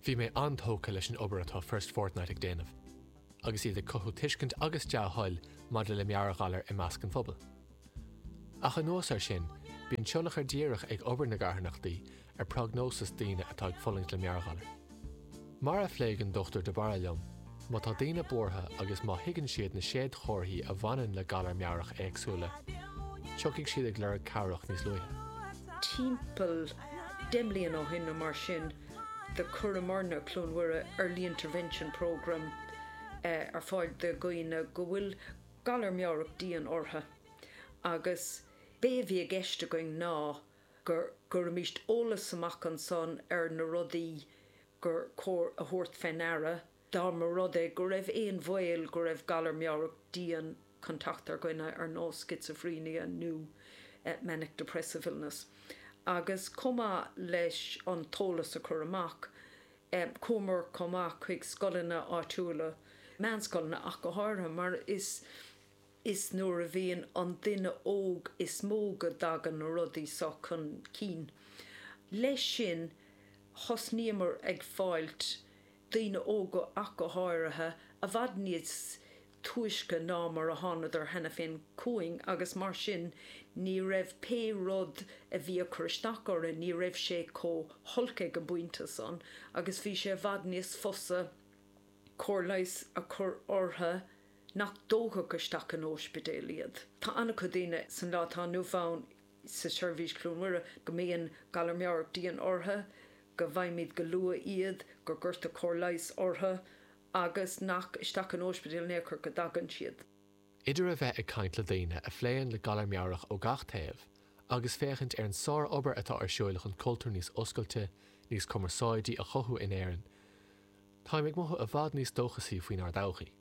Bhí mé an-tógtha leis an obair atá First Fortnight ag déanamh agus iad ag cothú tuiscint agus dea-thoil maidir le meabhairghalar i measc an phobail. Ach anuas air sin, bíonn tionchar díreach ag obair na gcarthanachtaí ar prognóis daoine atá ag fulaingt le meabhairghalar. Mar a phléigh an Dr De Barra liom, má tá daoine buartha agus má thuigeann siad na réadchomharthaí a bhaineann le galair meabhrach éagsúla, tiocfaidh siad ag lorg cabhrach níos luaithe. Timpeall deich mbliana ó shin nó mar sin, do chuireamarna, Cluain Mhuire, Early Intervention Programme ar fáil do dhaoine go bhfuil galar meabhrach dian orthu agus b'é a bhí i gceist againn ná, go gcuirimíst eolas amach ansan ar na rudaí gur cóir a thabhairt fé ndeara, dá mba rud é go raibh aon bhaol go raibh galar meabhrach dian chun teacht ar dhuine, ar nós schizophrenia nó manic depressive illness. Agus chomh maith leis an t-eolas a chur amach, chuamar chomh maith chuig scoileanna áitiúla, meánscoileanna ach go háirithe, mar is. Is nuair a bhíonn an duine óg is mó go dtagann na rudaí seo chun cinn. Leis sin, thosnaíomar ag fáilt, daoine óga ach go háirithe, i bhfad níos túisce ná mar a thánadar cheana féin chugainn agus mar sin ní raibh pé rud a bhí ag cur isteach orthu, ní raibh sé chomh holc ag an bpointe san agus bhí sé i bhfad níos fusa cóir leighis a chur orthu. nach dtógfaí isteach in ospidéal iad. Tá an-chuid daoine san lá atá inniu ann sa seirbhís Chluain Mhuire go mbíonn galar meabhrach dian ortha, go bhfaighimíd go luath iad, go gcuirtear cóir leighis ortha agus nach isteach in ospidéal in aon chor go dtagann siad. Idir a bheith ag caint le daoine a phléann le galar meabhrach ó gach taobh agus féachaint ar an sár-obair atá ar siúl chun cultúr níos oscailte, níos cumarsáidí a chothú in Éirinn, táim ag mothú i bhfad níos dóchasaí faoinár dtodhchaí.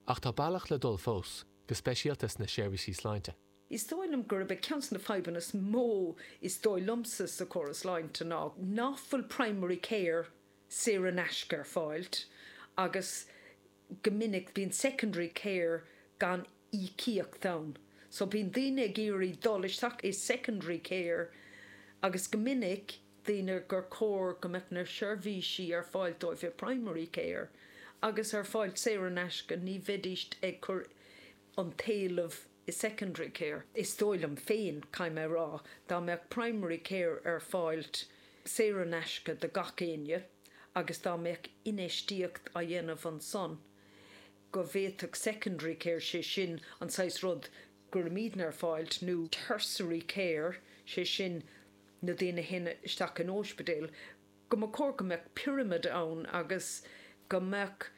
Ach tá bealach le dul fós, go speisialta sna seirbhísí sláinte. Is dóigh liom gurb é ceann des na fadhbanna is mó is dóigh liomsa sa chóras sláinte ná ná fuil primary care saor in aisce ar fáilt agus go minic bíonn secondary care gan íocaíocht ann so bíonn daoine ag iarraidh dul isteach i secondary care agus go minic daoine gur chóir go mbeadh na seirbhísí ar fáilt dóibh i primary care agus ar fáilt saor in aisce, ní bheidíst ag cur an t-éileamh i secondary care. Is dóigh liom féin, caithfidh mé a rá, dá mbeadh primary care ar fáilt saor in aisce do gach éinne agus dá mbeadh infheistíocht á dhéanamh ansan, go bhféadfadh secondary care, sé sin an saghas rud go rabhamar ag fáilt, nó tertiary care, sé sin na daoine a théann isteach in óispidéal, go mba chóir go mbeadh pyramid ann agus go mbeadh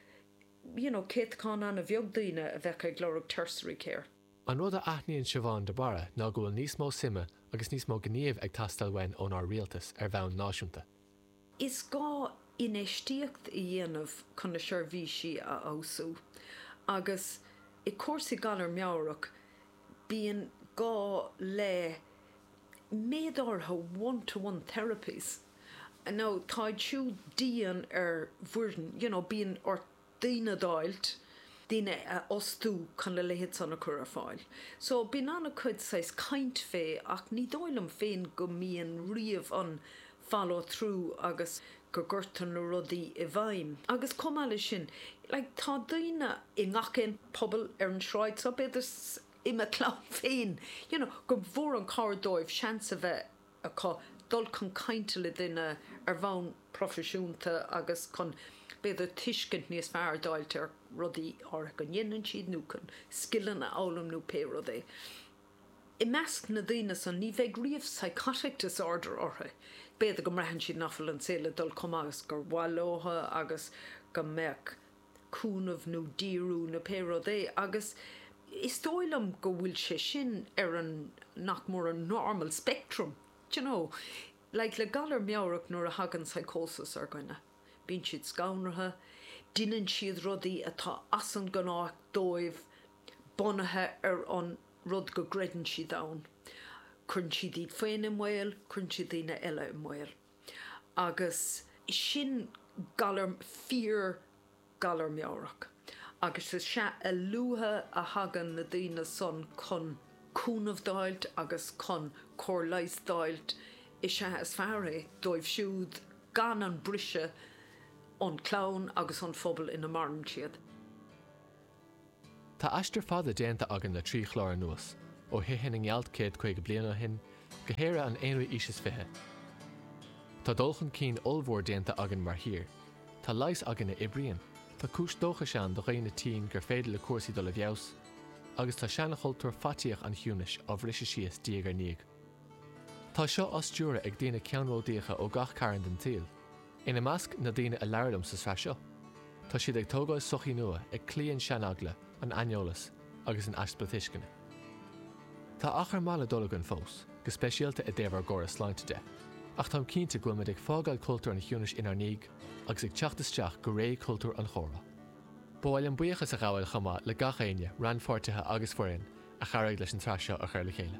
you know céatacán an-bheag daoine a bheadh ag lorg tertiary care. An rud a aithníonn Siobhán de Barra ná go bhfuil níos mó suime agus níos mó gnímh ag teastáil uainn ón ár rialtas ar bhonn náisiúnta. Is gá infheistíocht a dhéanamh chun na seirbhísí a fheabhsú agus i gcúrsaí galar meabhrach bíonn gá le méid áirithe one to one therapies agus táid siúd dian ar bhfoireann you know bíonn ort daoine a dh'fháilt, daoine a fhostú chun a leithéid san a chur ar fáil. So bíonn an-chuid saghas caint fé ach ní dóigh liom féin go mbíonn riamh an follow through agus go gcuirtear na rudaí i bhfeidhm. Agus chomh maith leis sin, like tá daoine i ngach aon pobal ar an sráid seo, b'fhéidir i mo chlann féin, you know, gur mhór an chabhair dóibh seans a bheith acu dul chun cainte le duine ar bhonn proifisiúnta agus chun, b'fhéidir, tuiscint níos fearr a d'fháilt ar rudaí áirithe go ndéanann siad nó chun scileanna a fhoghlaim nó pé rud é. I measc na daoine san, ní bheidh riamh psychotic disorder orthu. B'fhéidir go mbraitheann siad nach bhfuil an saol ag dul chomh maith agus ba mhaith leo agus go mbeadh, cúnamh nó díriú nó pé rud é agus is dóigh liom go bhfuil sé sin ar an, nach mór an normal spectrum d'you know. Like le galar meabhrach nuair a thagann psychosis ar dhuine, bíonn siad scanraithe, deineann siad rudaí atá as an gnách dóibh bunaithe ar an rud go gcreideann siad ann, cuireann siad iad féin i mbaol, cuireann siad daoine eile i mbaol. agus sin galar fíor galar meabhrach agus is ea a luaithe a thagann na daoine san chun cúnamh d'fháilt agus chun cóir leighis d'fháilt is ea is fearr é dóibh siúd gan an briseadh ón clann agus ón phobal ina maireann siad. Tá aistear fada déanta againn le trí chlár anuas, ó thithe na ngealt céad caoga bliain ó shin, go hÉire an aonú aois is fiche. Tá dul chun cinn ollmhór déanta againn mar thír. Tá leigheas againn a oibríonn, tá cúis dóchais ann do dhaoine tinn gur féidir le cúrsaí dul i bhfeabhas, agus tá seanchultúr faitíoch an chiúnais á bhriseadh síos diaidh ar ndiaidh. Tá seo á stiúradh ag daoine ceannródaíocha ó gach cearn den tsaoil. Ina measc, na daoine a labhair liom sa sraith seo. Tá siad ag tógáil sochaí nua, ag cloí an seaneagla, an aineolas, agus an easpa tuisceana. Tá achar maith le dul againn fós, go speisialta i dtaobh ár gcóras sláinte de. Ach táim cinnte go bhfuil muid ag fágáil cultúr an chiúnais inár ndiaidh agus ag teacht isteach go ré cultúr an chomhrá. Ba mhaith liom buíochas a ghabháil chomh maith le gach éinne, rannpháirtithe agus foireann, a chabhraigh leis an tsraith seo a chur le chéile.